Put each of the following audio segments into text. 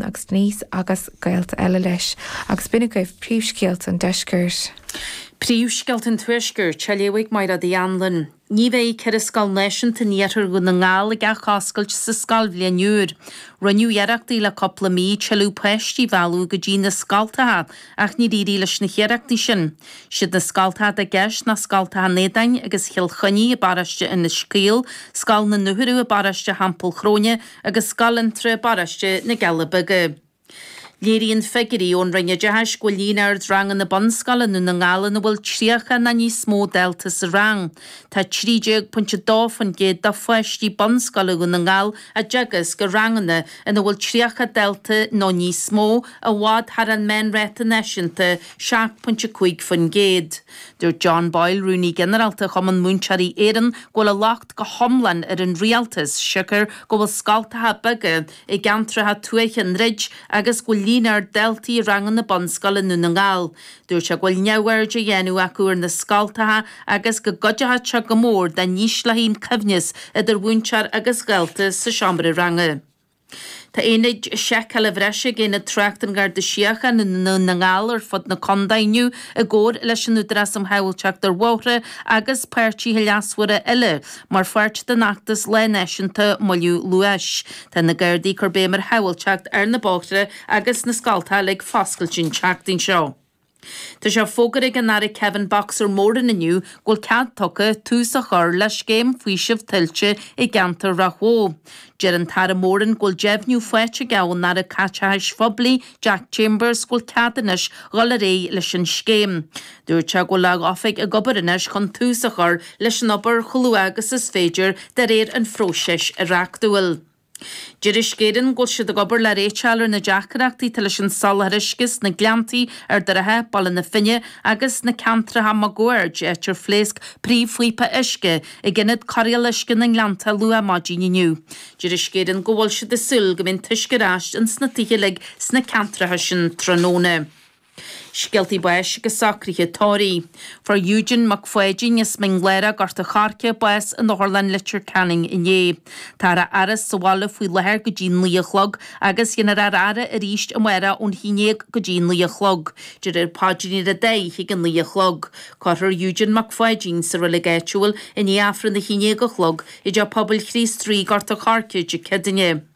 agus Denise agus gaolta eile leis, agus b'in agaibh príomhscéalta an deiscirt. Príomhscéalta an tuaiscirt, a léifidh Maighread Uí Anluain. Ní bheidh ceithre scoil náisiúnta in iarthar Dhún na nGall ag athoscailt sa scoilbhliain úr. Rinneadh iarrachtaí le cúpla mí tuilleadh páistí a mhealladh go dtí na scoltacha ach níor éirigh leis na hiarrachtaí sin. Siad na scoltacha atá i gceist ná scoltacha an Éadain agus Chill Chainnigh i bparóiste Inis Caoil, scoil na Dúchoradh i bparóiste Theampall Chróine, agus Scoil Fhionntrá i bParóiste na gCealla Beaga. Léiríonn figiúirí ón Roinn Oideachais go bhfuil líon ard ranganna bunscoile i nDún na nGall ina bhfuil 30 nó níos mó dalta sa rang. Tá 13.2% de pháistí bunscoile Dhún na nGall á dteagasc i ranganna ina bhfuil 30 dalta nó níos mó, i bhfad thar an meánráta náisiúnta, 7.5%. Dúirt John Boyle, Rúnaí Ginearálta Chumann Múinteoirí Éireann, go bhfuil a go hiomlán ar an rialtas siocair go bhfuil scoltacha beaga i gceantracha tuaithe ag druid agus go bhfuil líon ard daltaí i ranganna bunscoile i nDún na nGall. Dúirt sé go bhfuil neamhaird á dhéanamh acu ar na scoltacha agus go gcuideodh sé go mór dá n-ísleofaí an coibhneas idir mhúinteoir agus dhalta sa seomra ranga. Tá ionaid seiceála bhreise ag Aonad Tráchta an Gharda Síochána i nDún na nGall ar fud na contae inniu i gcomhar leis an Údarás um Shábháilteacht ar Bhóithre agus páirtithe leasmhara eile mar pháirt den fheachtas Lá Náisiúnta Moilliú Luais. Tá na Gardaí ag cur béim ar shábháilteacht ar na bóithre agus na scoltacha uilig ag foscailt an tseachtain seo. Tá sé fógartha ag an Aire Kevin 'Boxer' Moran inniu go bhfuil cead tugtha tús a chur le scéim faoisimh tuilte i gceantar Ráth Bhoth. Deir an tAire Moran go bhfuil deimhniú faighte aige ón Aire Caiteachais Phoiblí Jack Chambers go bhfuil cead anois dhul ar aghaidh leis an scéim. Dúirt sé go bhfuil a oifig ag obair anois chun tús a chur leis an obair chomh luath agus is féidir de réir an phróisis reachtúil. Deir Uisce Éireann go bhfuil siad ag obair le réiteach a fháil ar na deacaireachtaí atá leis an soláthar uisce sna Gleanntaí, Ard an Rátha, Baile na Finne agus sna ceantracha máguaird, áit ar phléasc príomhphíopa uisce ag Ionad Cóireála Uisce na nGleannta luath maidin inniu. Deir Uisce Éireann go bhfuil siad ag súil go mbeidh an t-uisce ar ais ins na tithe uilig sna ceantracha sin tráthnóna. Scéaltaí báis agus socruithe tórraimh. Fuair Hugh Dan Mac Pháidín as Mín Lárach, Gort an Choirce, bás in Otharlann Leitir Ceanainn inné. Táthar á fhaire sa bhaile faoi láthair go dtí naoi a chlog agus déanfar a fhaire arís amárach ón haon dhéag go dtí naoi a chlog, déarfar an Paidrín ar an dá oíche ag a naoi a chlog. Cuirfear Hugh Dan Mac Pháidín sa reilig áitiúil i ndiaidh Aifreann a haon dhéag a chlog i dTeach Pobail Chríost Rí, Gort an Choirce, Dé Ceadaoine.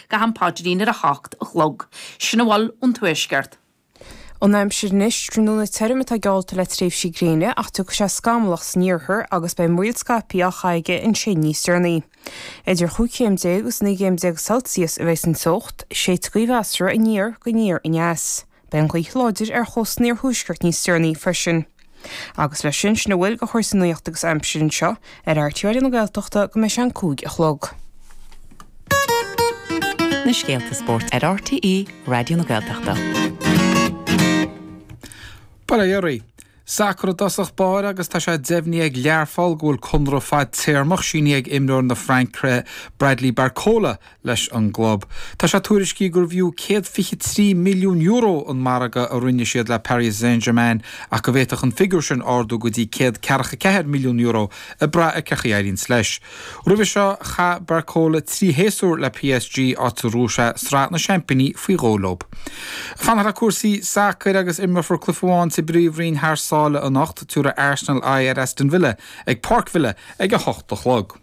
go ham paidrín ar a hocht a chlog. Sin a bhfuil ón Tuaisceart. An aimsir anois, tráthnóna tirim atá geallta le tréimhsí gréine ach tiocfaidh sé scamallach san iarthar agus beidh múraíl scaipthe á chaitheamh aige ansin níos deireanaí. Idir chúig chéim déag agus naoi gcéim déag Celsius a bheidh san teocht, séidfidh gaoth mheasartha aniar go aniar aneas. Beidh an ghaoth láidir ar chósta an iarthuaiscirt níos deireanaí freisin. Agus leis sin, sin a bhfuil de chúrsaí nuachta agus aimsire anseo ar RTÉ Raidió na Gaeltachta go mbeidh sé an cúig a chlog. na scéalta spóirt ar RTÉ Raidió na Gaeltachta. Ba léir é. Sacar i dtosach báire agus tá sé deimhnithe ag Learpholl go bhfuil conradh fadtéarmach sínithe ag imreoir na Fraince Bradley Barcola leis an gclub. Tá sé tuairiscithe gurbh fhiú €123 milliún an margadh a rinne siad le Paris Saint-Germain ach go bhféadfadh an figiúr sin ardú go dtí €144 milliún ag brath ar cén chaoi a éiríonns leis Roimhe seo, chaith Barcola trí shéasúr le PSG, áit ar bhuaigh sé Sraith na Seaimpíní faoi dhó leo. Ag fanacht le cúrsaí sacair agus imreofar cluiche amháin sa bPríomhroinn thar sáile anocht. Tabharfaidh Arsenal aghaidh ar Aston Villa ag Páirc Villa ag a hocht a chlog.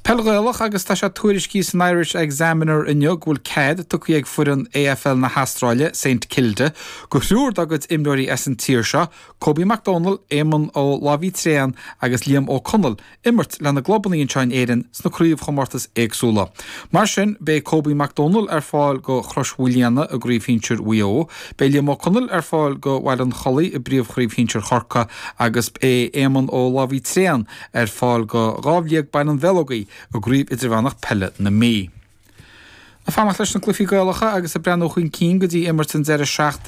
Peil Ghaelach agus tá sé tuairiscithe san Irish Examiner inniu go bhfuil cead tugtha ag foireann AFL na hAstráile, Saint Kilda, go thriúr dá gcuid imreoirí as an tír seo, Kobe Mac Domhnaill, Éamonn Ó Labhraí Tréan agus Liam Ó Conaill, imirt lena gclubannaí anseo in Éirinn sna craobhchomórtais éagsúla. Mar sin, beidh Kobe Mac Domhnaill ar fáil go Chrois Mhaoilíona i gcraobh shinsir Mhaigh Eo, beidh Liam Ó Conaill ar fáil go Bhaile an Chollaigh i bpríomhchraobh shinsir Chorcaí agus beidh Éamonn Ó Labhraí Tréan ar fáil go Dhamhliag Baile an Bheileogaigh i gCraobh Idirmheánach Peile na Mí. Ag fanacht leis na cluichí Gaelacha agus ag breathnú chun cinn go dtí imirt an deireadh seachtaine,